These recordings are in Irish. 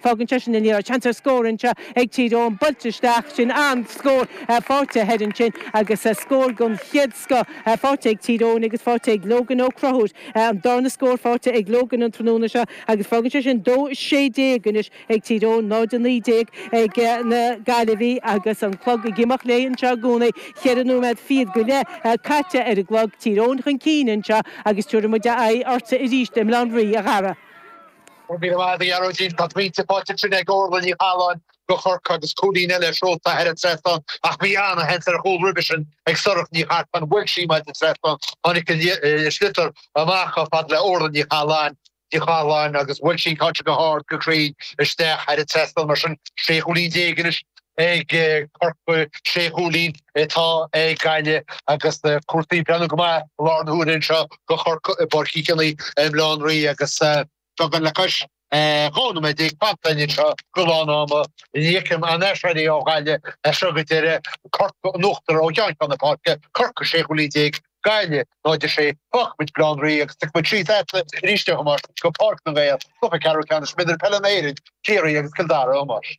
Fágann sé sin a leaids seans ar scór anseo ag Tír Eoghain. Buailte isteach. Sin an scór. Faighte thoir ansin agus scór den chéad scoth faighte ag Tír Eoghain agus faighte ag Logan Ó Crothúir. An darna scór faighte ag Logan an tráthnóna seo agus fágann sé sin 2-16 anois ag Tír Eoghain, 0-19 ag na Gaillimhigh agus an clog ag imeacht léi anseo i gcónaí. Cheithre nóiméad fichead go leith caite ar an gclog. Tír Eoghain chun cinn anseo agus tabharfaidh muid aghaidh ortsa arís i mBleán Rí a' Gharrdha. Ó muise a Ghearóidín, tá pointe faighte ansin ag Órla Ní Chathaláin do Chorcaigh agus cúilín eile seolta thar an trasnán ach bhí ana-sheans ar chúl roimhe sin ag Sorcha Nic Artáin bhuail sí an maide trasnáin. Tháinig an sliotar amach chomh fada le Órla Ní Chathaláin Ní Chathaláin agus bhuail sí an ceann seo go hard go cruinn isteach thar an trasnán mar sin sé chúilín déag anois ag Corcaigh, Sé Chúilín atá ag Gaillimh agus cúrsaí ag breathnú go maith i láthair na huaire anseo do Chorcaigh i bPáirc Uí Chionaoith i mBleán Rí agus beagán le cois dhá nóiméad déag fanta anseo go lán ama. Ní fheicim aon aiséirí ó Ghaillimh as seo go deireadh, Corcaigh in uachtar ó cheann ceann na páirce, Corcaigh Sé Chúilín Déag, Gaillimh 0 6. Fágfaidh muid Bleán Rí agus gabhfaidh muid síos a'd arís a Thomáis go Páirc na nGael, Cluiche Ceathrú Ceannais Mionúir Peile na hÉireann, Ciarraí agus Cill Dara, a Thomáis.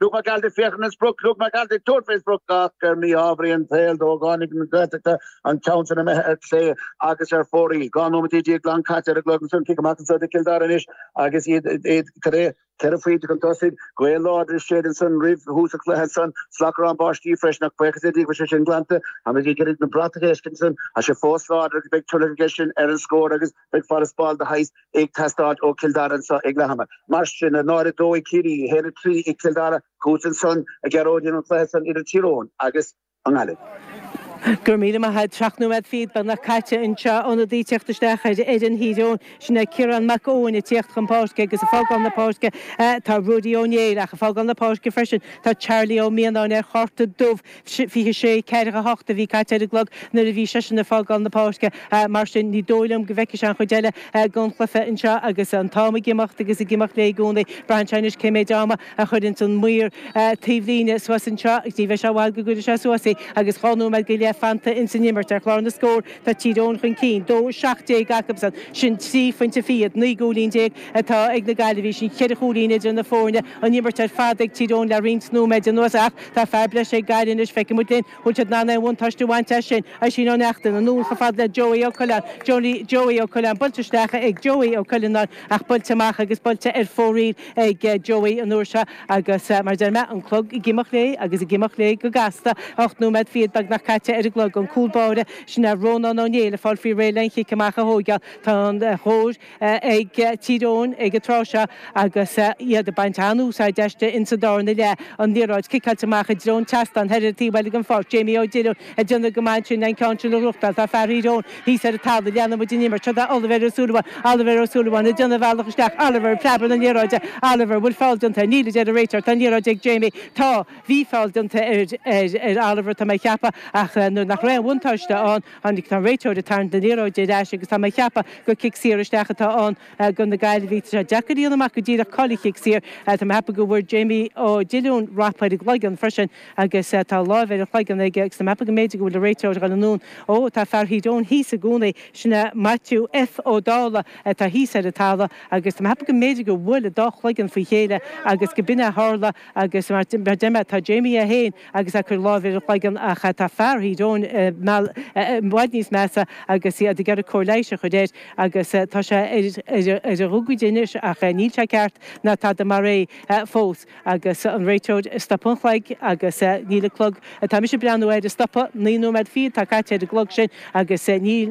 Luke McAlty féachaint ar an sprioc Luke McAlty Dúirt mé sprioc ach ar mhí-ámharaí an tsaoil dó Tháinig na Gaeltachta an ceann san imithe ar chlé agus ar phóraí. Dhá nóiméad déag glan caite ar a gclog agus an cic amach anso do Chill Dara anois agus iad iad cad é? Ceithre phointe chun tosaigh. Gaoth láidir ag séideadh ansan roimh thús an chluiche ansan. Slabhcrán báistí freisin ach buíochas le Dia go bhfuil sé sin glanta. Táimid ag iarraidh na bratacha a fheiscint ansan. Tá sé fós láidir agus beidh tuilleadh aige sin ar an scór agus Beidh farasbarr de shaghas éigin ag teastáil ó Chill Dara anseo ag leath ama. Mar sin, 0-2 ag Ciarraí, 1-3 ag Cill Dara, chughat ansan a Ghearóidín don gcluiche san idir Tír Eoghain agus an Ghaillimh. Go raibh míle maith a'd. Seacht nóiméad fichead beagnach caite anseo. Ionadaí ag teacht isteach ar fhoireann Thír Eoghain, sin é Ciarán Mac Eoin ag tíocht chun páirce agus ag fágáil na páirce tá Ruairí Ó Néill ach ag fágáil na páirce freisin tá Charlie Ó Mianáin ar chárta dubh. Fiche sé ceathracha a hocht a bhí caite ar an gclog nuair a bhí seisean ag fágáil na páirce, mar sin ní dóigh liom go bhfeicfidh sé an chuid eile den chluiche anseo agus an t-am ag imeacht agus ag imeacht léi i gcónaí. Braitheann sé anois cé méid ama a chuireanns an maor taobhlíne suas anseo. Ní bheidh sé i bhfad go gcuirfidh sé suas í agus dhá nóiméad go leith fanta ins an imirt. Ar chlár na scór tá Tír Eoghain chun cinn, dó seacht déag acusan. Sin trí phointe fichead. Naoi gcúilín déag atá ag na Gaillimhigh. Sin cheithre chúilín idir na foirne. An imirt ar fad ag Tír Eoghain le roinnt nóiméid anuas ach, Tá fear breis ag Gaillimh anois, feicfidh muid linn an bhfuil siad in ann aon bhuntáiste a bhaint as sin. Oisín Ó Neachtain, anall chomh fada le Joey Ó Coileáin, Joey Ó Coileáin, buailte isteach ag Joey Ó Coileanáin ach buailte amach agus buailte ar fóraoil ag Joey an uair seo agus mar a deir mé, an clog ag imeacht léi agus ag imeacht léi go gasta. Ocht nóiméad fichead beagnach caite ar an gclog. An cúl báire, sin é Rónán Ó Néill ag fáil faoi réir le an chic amach a thóigeáil. Tá an chóir. ag Tír Eoghain ag an tráth seo agus iad ag baint an-úsáid aisti ins an dá fhoireann i leith An liathróid ciceáilte amach i dtreo an tseastán thoir ar an taobh eile den pháirc. Jamie Ó Diollúin ag déanamh go maith ansin an ceann sin a bhlocáil. Tá fear Thír Eoghain thíos ar an talamh. Leanann muid an imirt seo Oliver Ó Súilleabháin. Oliver Ó Súilleabháin ag déanamh a bhealach isteach. Oliver ag preabadh na liathróide. Oliver, bhfuil foul déanta air? Níl a deir an réiteoir. Tá an liathróid ag Jamie. Tá. Bhí foul déanta ar Oliver tá mé ag ceapadh ach nuair nach raibh aon bhuntáiste ann, Tá an réiteoir ag tarraingt na liathróide ar ais agus tá mé ag ceapadh gur cic saor isteach atá ann do na Gaillimhigh. Tá sé deacair a dhéanamh amach go díreach cá bhfuil an cic saor. Tá mé ag ceapadh go bhfuair Jamie Ó Diollúin rap ar an gcloigeann freisin agus tá lámh ar a chloigeann aige agus tá mé ag ceapadh go mb'fhéidir go bhfuil an réiteoir ag dhul anonn. Ó, tá fear Thír Eoghain thíos i gcónaí. Sin é Maitiú F. Ó Dálaigh atá thíos ar an talamh agus tá mé ag ceapadh go mb'fhéidir gur bhuail an dá chloigeann faoi chéile agus go b'in é a tharla agus mar a deir mé tá Jamie é fhéin agus ag cur láimhe ar a chloigeann ach tá fear Thír Eoghain i bhfad níos measa agus iad ag iarraidh cóir leighis a chur air agus tá sé ar a ghogaide anois ach níl sé ceart ná tada mar é fós agus an réiteoir ag stopadh an chloig agus níl an clog atá mise ag breathnú air ag stopadh. Naoi nóiméad fichead atá caite ar an gclog sin agus níl